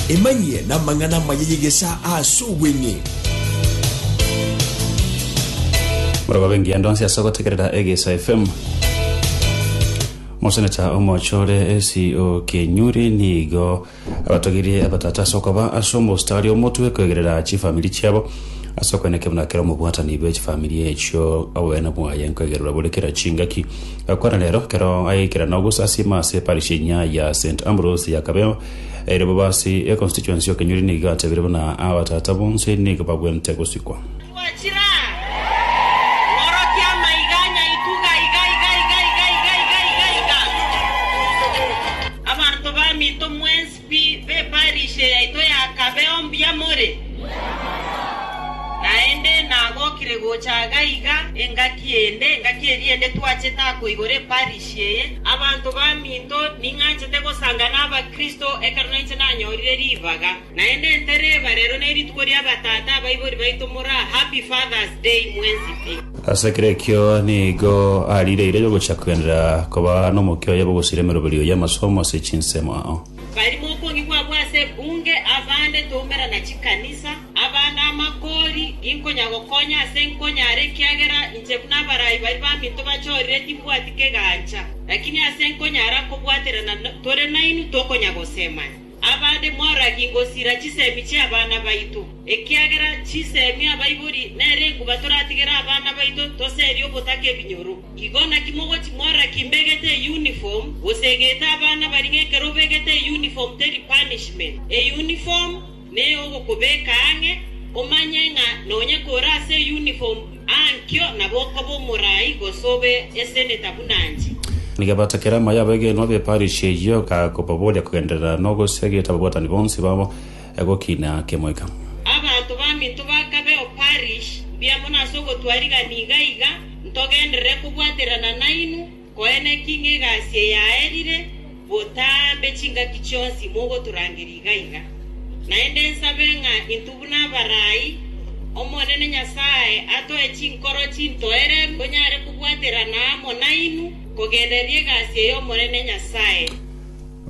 Emanyie namang'ana amaya y'egesaa ase obweng'e. Moroba bengiya ndonsi ase ogotegerera Egeisa FM. Moseneta omochore esi o Kenyuri nigo abatogirie abatata ase okoba ase omostari omotwe koegerera chifamiri chiabo ase okwenekea buna kera omobwatani bwe chifamiri echio obogene bwaye nkoegererwa bore kera chingaki Korende rero, ekero agaikera na ogosasiima ase parish enyia ya St. Ambrose ya Kabeo, ere bobe ase econstituency y'Okenyori nigo gateebire buna abatata bonsi nigo bagwente gosikwa. Pi b'eparisha yaito yakabeo mbuya more? Naende nagokire gocha iga iga engaki ende, engaki eria ende twachete akoigora eparisha eye. Abanto baminto ning'anchete gosanga n'Abakristo ekero nainche nanyorire ribaga. Naende ntereba rero nerituko ri'abatata abaibori baito moraa Happy Father's Day mwensi pi. Ase kera ekio nigo ariireire gochia kogenderera koba nomokia oye bw'ogosiria emeroberi oye amasomo ase chinsemo ao. Barimo okong'igwa abwo ase ebunge, abande toumera na chikanisa, abande amakori, inkonya gokonya ase nkonyare ekiagera inche buna abarai baria baminto bachorire timbwati kegancha, lakini ase nkonyara kobwaterana tore nainwe tokonya gosemania. Abande moragie gosira chisemi chi'abana baito, ekiagera chisemi abaibori nere enguba toratigere abana baito toserie ogotaka ebinyoro. Igo naki mogochi moragie mbegete euniform, gose egete abana baria ng'ekero obegete euniform teri punishment. Euniform neyogokobeka ang'e, omanye ng'a nonya kore ase euniform. Ankio nabo okobe omorai gose obe eseneta buna inche. Na gebato keria amaye abegenwa b'eparishia eyio gakobaboria kogenderera nogosiagete ababwatani bonsi babo gokiina kemoika. Abanto baminto bakabe, O parish, mbuya mono ase ogotwa riga niga iga ntogenderere kobwaterana nainwe. Koene ki ng'egasi eyaerire botambe chingaki chionsi mogotorangeria iga iga? Naende nsabe ng'a intwe buna abarai, Omonene Nyasae atoe chinkoro chintoereru tonyare kobwaterana amo nainwe kogenderera egasi ey'Omonene Nyasae.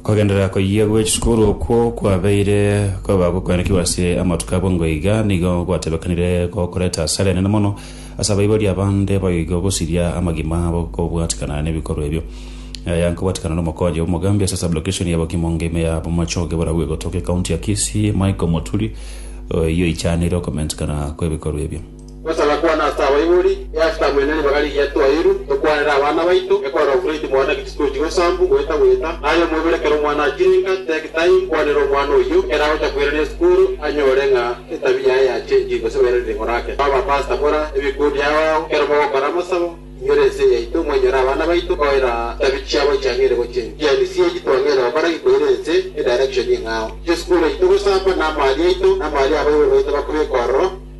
Kogenderera koyia gwe chisukuru okwo kwabeire koba gokoenekigwa ase amatuko abwo ngwo iga nigo gwatebekanire gokoreta asara enene mono ase abaibori abande boigo gosiria amagima abo kobwatikana nebikorwa ebio. Aya nkobwatikana nomokonyi omogambi ase sublokeshoni ya Bokimong ime ya Bomachoge borabu egotoka ekaunti ya Kisii Michael Moturi oyio oichanire okomentekana kwebikorwa ebio. Gosagakwana ase abaibori, e ase taabu ende ribaga rigiya twairu, tokwanere abana baito, ekorora okureti mwana gati tochi gosambu goeta goeta, aye omoiboro ekero omwana achirenka, take time kwanera omwana oyio, ekero agocha koirania esukuru, anyore ng'a etabia yaye yachenchire gose bairane ring'o rake. Aba pastor bora ebikundi ao ao, ekero mogokora amasabo, inyore ense yaito, mwainyore abana baito, koira tabia chiabo chiang'eire gochia ense. Chiani sie echi twang'eire gokora gikoire ense e direction eng'ao. Chesukuru yaito gosamba, na amaari aito, na amaari abaibori baito bakure ekororo,